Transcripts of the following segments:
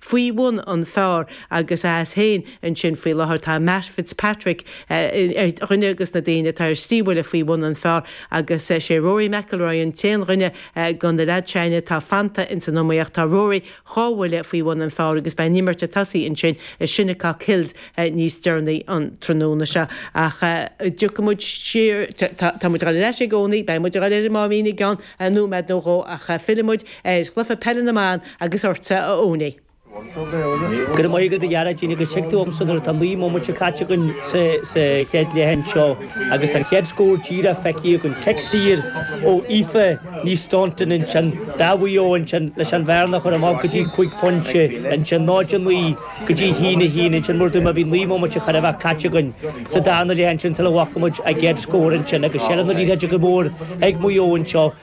faoi bhun an phar. agus as féin ansin faoi láthair. Tá Matt Fitzpatrick ar dhuine de na daoine atá ar trí bhuille faoi bhun an phar. agus sé Rory McIlroy an t-aon dhuine go na leaids sin againne atá fanta ins an iomaíocht. Tá Rory dhá bhuille faoi bhun an phar. agus beidh an imirt ag tosaí ansin i Shinnecock Hills níos deireanaí an tráthnóna seo. Ach tiocfaidh muid siar. Tá muid ag dul ar ais i gcónaí. Beidh muid ag dul ar an Máimín i gceann nóiméad nó dhó ach fillfidh muid ar chluiche peile na mban agus ortsa a Owney. Go raibh maith agat, a Ghearóidín, agus tig tú chugamsa nuair atá naoi mbomaite caite againn sa chéad leath anseo agus tá an chéad scór díreach feicthe againn. Cic saor ó Aoife Ní Staunton ansin do Mhaigh Eo ansin leis an bhearna a chur amach go dtí cúig phointe ansin, 0-9 go dtí 1-1 ansin. Mar a dúirt mé bhí naoi mbomaite chóir a bheith caite againn sa darna leath ansin sula bhfaca muid an chéad scór ansin agus seilbh na liathróide go mór ag Maigh Eo anseo.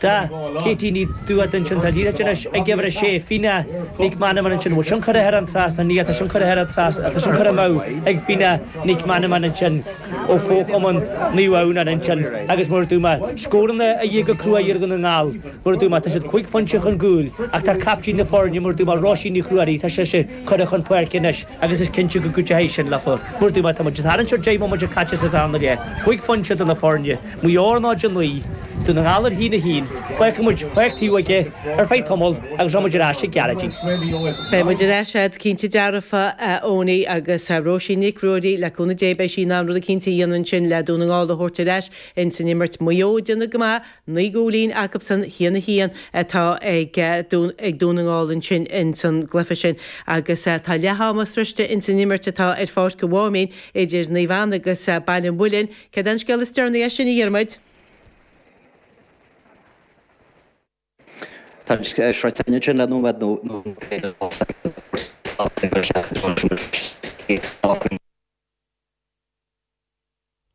Tá Katie Ní Dubhda ansin tá an liathróid anois ag uimhir a sé, Fíona Nic Manaman ansin, a bhfuil tionchar ahead an tráth san atá tionchar ahead an tráth atá tionchar amú ag Fíona Nic Manaman ansin ó fochumann Naomh Adhamhnáin ansin agus mar a dúirt mé scóranna a dhíth go cruaidh ar Dhún na nGall mar a dúirt mé tá siad cúig phointe chun cúil ach tá captaen na foirne mar a dúirt mé Róisín Nic Ruairí tá sise curtha chun páirce anois agus is cinnte go gcuideoidh sin leo mar a dúirt mé tá muid ag tarraingt ar 10 mbomaite caite sa darna leath, 5 phointe idir na foirne, Maigh Eo ar náid a 9 Dún na nGall ar a haon a 1, fágfaidh muid an cluiche taobh istigh ar feadh tamaill agus rachaidh muid ar ais ag Gearóidín. Beidh muid ar ais agat, cinnte dearfa, a Eoiní, agus Róisín Nic Ruairí, le cúnamh Dé beidh sí in ann rud éicínt a dhéanamh ansin le Dún na nGall a thabhairt ar ais ins an imirt. Maigh Eo ag déanamh go maith Naoi gcúilín agabhsan Shíon a Shíon atá ag ag Dún na nGall ansin ins an gcluife sin agus tá leath ama sroiste ins an imirt atá ar Pháirc an Mháimín idir Naomh Anna agus Baile an Mhuilinn. Cad é an scéal is deireanaí as sin, a Dhiarmaid? Tá an sroiste ansin le nóiméad nó nó cé go bhfuil said ag tabhairt faoin stáitse ag an cheathrú deoise nó faoin stáitse ag an gcéad stáitse.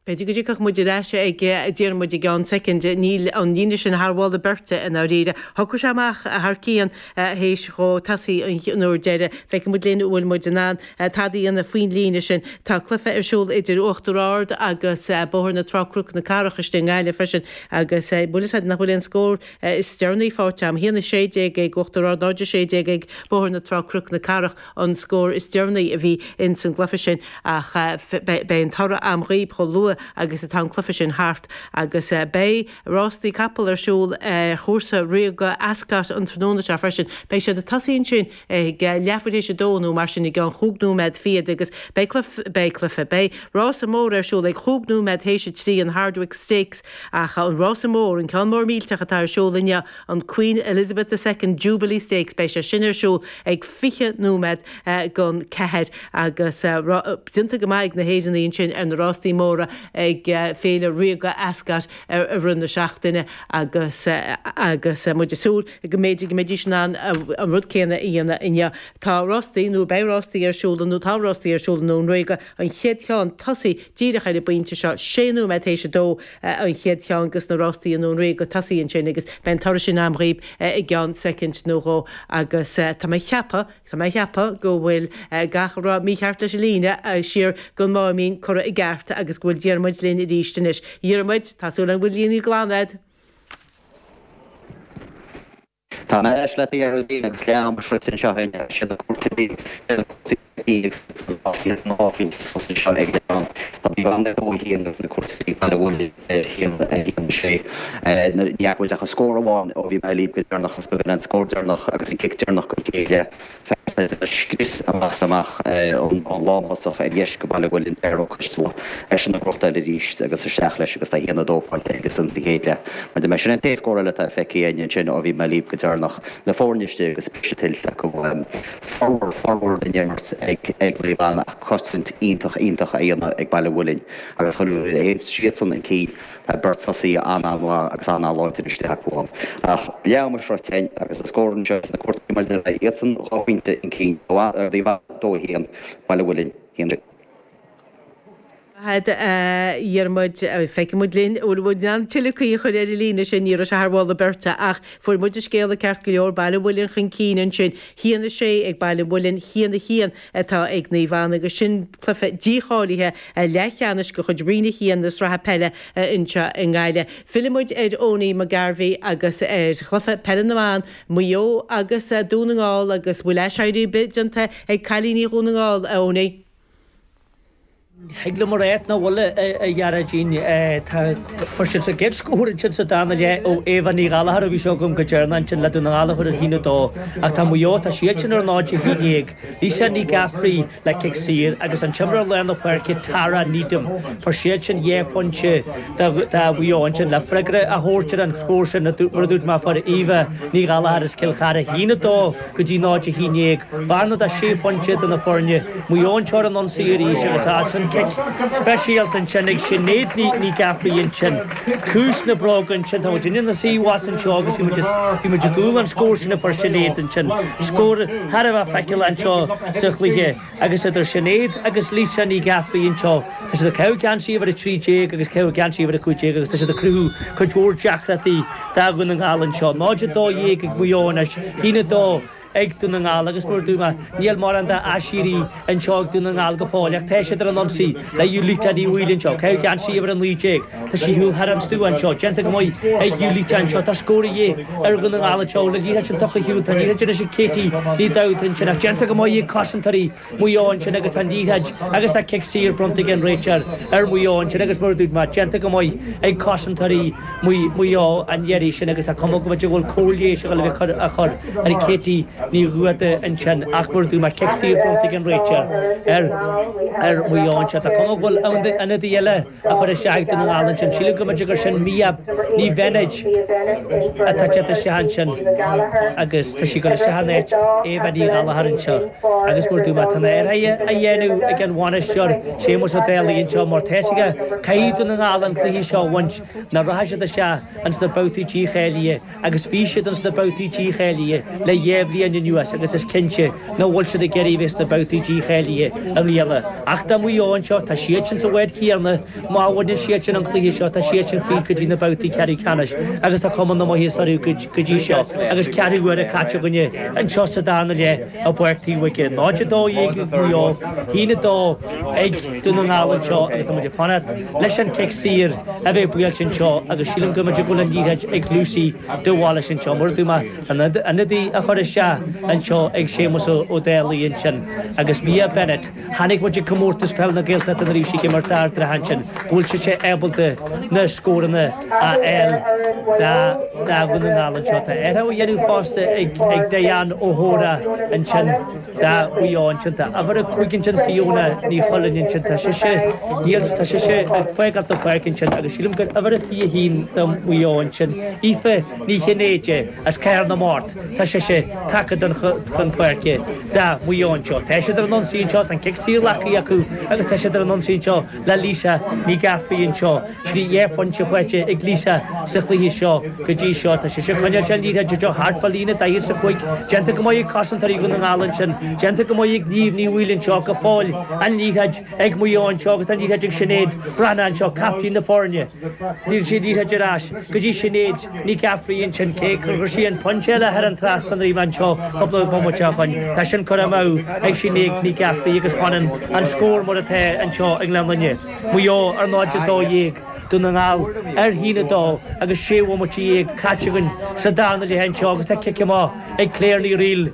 B'fhéidir go dtiocfadh muid ar ais ag Diarmaid i gceann soicind. Níl an líne sin thar mholadh beirte, i ndáiríre. Thiocfadh sé amach thar cionn théis dhó tosaigh an uair deireadh. Féachfaidh muid linn an bhfuil muid in ann tada a dhéanamh faoin líne sin. Tá cluiche ar siúl idir Uachtar Ard agus Bóthar na Trá-Cnoc na Cathrach istigh i nGaillimh freisin agus más é do thoil é an scór is deireanaí faighte agam 1:16 ag Uachtar Ard, 0:16 ag Bóthar na Trá-Cnoc na Cathrach. an scór is deireanaí a bhí ins an gcluife sin ach beidh an toradh agam dhaoibh chomh luath agus atá an cluife sin thart agus beidh rástaí capall ar siúl ar chúrsa Ríoga Ascot an tráthnóna seo freisin. Beidh siad ag tosaí ansin ag leath bhfuair théis a dó nó mar sin i gceann chúig nóiméad fichead agus beidh cluife, beidh cluife, beidh rása mór ar siúl ag chúig nóiméad théis a trí an Hardwicke Stakes ach an rása mór, an ceann mór mílteach atá ar siúl inniu. an Queen Elizabeth the Second Jubilee Stakes. Beidh sé sin ar siúl ag 20 nóiméad gon ceathair agus déanta go maith ag na hÉireannaigh ansin ar na rástaí móra ag Féile Ríoga Ascot i rith na seachtaine agus muid ag súil go mb'fhéidir go mbeidís in ann an rud céanna a dhéanamh inniu. Tá rástaí, nó beidh rástaí ar siúl nó tá rástaí ar siúl i nDún Ríoga, an chéad cheann tosaithe díreach ar an bpointe seo, sé nóiméad théis a dó, an chéad cheann agus na rástaí i nDún Ríoga tosaithe ansin agus beidh an toradh sin a'm dhaoib i gceann soicind nó dhó agus tá mé a cheapadh, tá mé a cheapadh go bhfuil gach a raibh mícheart leis an líne siar gon Máimín curtha i gceart agus go bhfuil Diarmuid linn arís anois. Dhiarmuid, tá súil agam go bhfuil líne glan a'd. Tá mé ar ais libh agus leath am sroichte anseo in aice le cúrsaí dí, le na cúrsaí dí ag suiteáil as iad san áiféis suas anseo ag an am. Tá mé ann le dó a haon agus na cúrsaí dí Baile Mhuilinn a haon a haon a sé. Ní fhaca muid ach an scór amháin ó bhí mé libh go deireanach agus go b'é an scór deireanach agus an cic deireanach go Chéide. Feictear scrios a bhaist amach ón lántosaí ar dheis go Bhaile Mhuilinn Dara Costello. Eisean ag crochadh arís agus isteach leis agus a haon a dó faighte aige san sa chéad leath. Mar a deirim sin an t-aon scór eile atá feicthe againn ansin ó bhí mé libh go deireanach. Na foirne istigh agus briseadh tuillte acu. Formhór formhór den imirt ag ag Naomh Anna ach cosaint iontach iontach á dhéanamh ag Baile Mhuilinn agus chuir sé iadsan 'un cinn Tá beart tosaithe an-an-mhaith agus an-láidir in Isteach Buan, ach leath am sroichte againn agus an scór anseo na cúrsaí mar deir mé, iadsan dhá phointe 'un cinn i bhfad ar díobhadh dó a haon, Baile Mhuilinn, haon sé. Fág againn, a Dhiarmaid, feicfidh muid linn, an bhfuil muid in ann tuilleadh caoi a chur ar an líne sin, ní raibh sé thar mholadh beirte ach fuair muid an scéala ceart go leor, Baile Mhuilinn chun cinn ansin, haon a sé ag Baile Mhuilinn, haon a haon. atá ag Naomh Anna agus sin cluiche dícháilithe leathcheannais de chuid Roinn 1 na Sraithe Peile anseo i nGaillimh. Fillfidh muid ar Eoiní Mac Gairbheith agus ar chluiche peile na mban, Maigh Eo agus Dún na nGall agus an bhfuil aiséirí ar bith déanta ag cailíní Dhún na nGall, a Eoiní? Thig liom a ráit nach bhfuil a Ghearóidín. Tá, fuair siad an chéad scór ansin sa darna leath ó Éabha Ní Ghallchóir ó bhí sé agam go deireanach ansin le Dún na nGall a chur ar a haon a dó ach tá Maigh Eo tá siad sin ar náid a haon déag Lisa Ní Eachmharcaigh le cic saor agus an t-imreoir lár na páirce Tara Needham fuair siad sin dhá phointe do Mhaigh Eo ansin le freagra a thabhairt ar an scór sin mar a dúirt mé a fuair Éabha Ní Ghallchóir as Cill Chartha a haon a dó go dtí 0 11 bearna de 6 phointe idir na foirne Maigh Eo anois ar an ionsaí arís agus as an cic speisialta ansin ag Sinéad Ní Eachmharcaigh ansin ciumhais na bróige ansin tá muid inár suí thuas anseo agus bhí muid bhí muid in iúl an scór sin a fuair Sinéad ansin scór thar a bheith feiceálach anseo sa chluiche. Agus idir Sinéad agus Lisa Ní Ghearfaigh anseo, tá siad ag caitheamh geansaí uimhir a trí déag agus ag caitheamh geansaí uimhir a cúig déag agus tá siad ag cruthú cuid mhór deacrachtaí do Dhún na nGall anseo. 0-12 ag Maigh Eo anois, 1-2 ag Dún na nGall agus mar a dúirt mé, níl mórán d'aiséirí anseo ag Dún na nGall go fóill ach tá siad ar an ionsaí le Ulitah Ní Bhaoill anseo, ag caitheamh geansaí uimhir a naoi déag. Tá sí ar shiúl thar an stua anseo, déanta go maith ag Ulitah anseo, tá scór de dhíth ar Dhún na nGall anseo ó an liathróid sin tugtha ar shiúl, tá an liathróid anois ag Katie Ní Dhomhnaill ansin ach déanta go maith ag cosantóirí Mhaigh Eo ansin agus tá liathróid agus tá cic saor bronnta ag an réiteoir ar Mhaigh Eo ansin agus mar a dúirt mé, déanta go maith ag cosantóirí Mhaigh Eo an iarraidh sin agus tá cuma go bhfuil cóir leighis ag gabháil a chur ar Katie Ní Dhomhnaill ansin ach mar a dúirt mé, cic saor bronnta ag an réiteoir ar Mhaigh Eo ansin, tá cuma go bhfuil ionadaí eile. a chur isteach ag Dún na nGall ansin. Sílim go mb'fhéidir gur sin Mia Ní Bheinéid atá ag teacht isteach ansin agus tá sí curtha isteach in áit Éabha Ní Ghallchóir anseo agus mar a dúirt mé. Tá na hathruithe á dhéanamh ag an bhainisteoir, Séamus Ó Dálaigh anseo mar tá a fhios aige caithfidh Dún na nGall an cluiche seo a bhaint nó rachaidh siad isteach ins na babhtaí dícháilithe. agus bhí siad ins na babhtaí dícháilithe le dhá bhliain anuas agus is cinnte nach bhfuil siad ag iarraidh a bheith sna babhtaí dícháilithe i mbliana ach do Mhaigh Eo anseo, tá siadsan sa bhád chéanna, má bhaineann siadsan an cluiche seo tá siadsan fríd go dtí na babhtaí ceathrú ceannais agus tá cuma na maitheasa orthu go dtí seo agus ceathrú huaire caite againne anseo sa darna leath i bPáirc Taobhóige 0-12 Maigh Eo, 1-2 ag Dún na nGall anseo agus tá muid ag fanacht. leis an cic saor a bheith buailte anseo agus sílim go mb'fhéidir go bhfuil an liathróid ag Lucy de Bhailís anseo. Mar a dúirt mé, ionadaí á chur isteach anseo ag Séamus Ó Dálaigh ansin agus Mia Bennett, chonaic muid ag Comórtas Peile na Gaeltachta nuair a bhí sí ag imirt d'Ard an Rátha ansin, go bhfuil sise ábalta na scóranna a fháil do Dhún na nGall anseo. Tá athruithe á dhéanamh fosta ag Diane O'Hora ansin. do Mhaigh Eo ansin, tá uimhir a cúig ansin Fiona Ní Choileáin ansin, tá sise, níl, tá sise ag fágáil an pháirc ansin agus sílim gur uimhir a 21 do Mhaigh Eo ansin, Aoife Ní Chinnéide as Cathair na Mart, tá sise tagtha don chun páirce do Mhaigh Eo anseo, tá siad ar an ionsaí anseo, tá an cic saor glactha acu agus tá siad ar an ionsaí anseo. le Lisa Ní Ghearfaigh anseo. Trí dhea-phointe faighte ag Lisa sa chluiche seo go dtí seo. Tá sise ag coinneáil an liathróid anseo thart fá líne 45. Déanta go maith ag cosantóirí Dhún na nGall ansin. Déanta go maith ag Niamh Ní Bhaoill anseo go fóill. An liathróid ag Maigh Eo anseo agus an liathróid ag Sinéad Breathnach anseo, captaen na foirne. An liathróid ar ais go dtí Sinéad. Ní Ghearfaigh ansin, cé gur chuir sí an pointe eile thar an trasnán anseo cúpla bomaite ó shoin, tá sin curtha amú ag Sinéad Ní Ghearfaigh agus fanann an scór mar atá anseo i nGleann Fhinne, Maigh Eo ar 0-12, Dún na nGall ar 1-2, agus sé bhomaite dhéag caite againn sa darna leath anseo agus tá cic amach ag Claire Ní Fhrighil.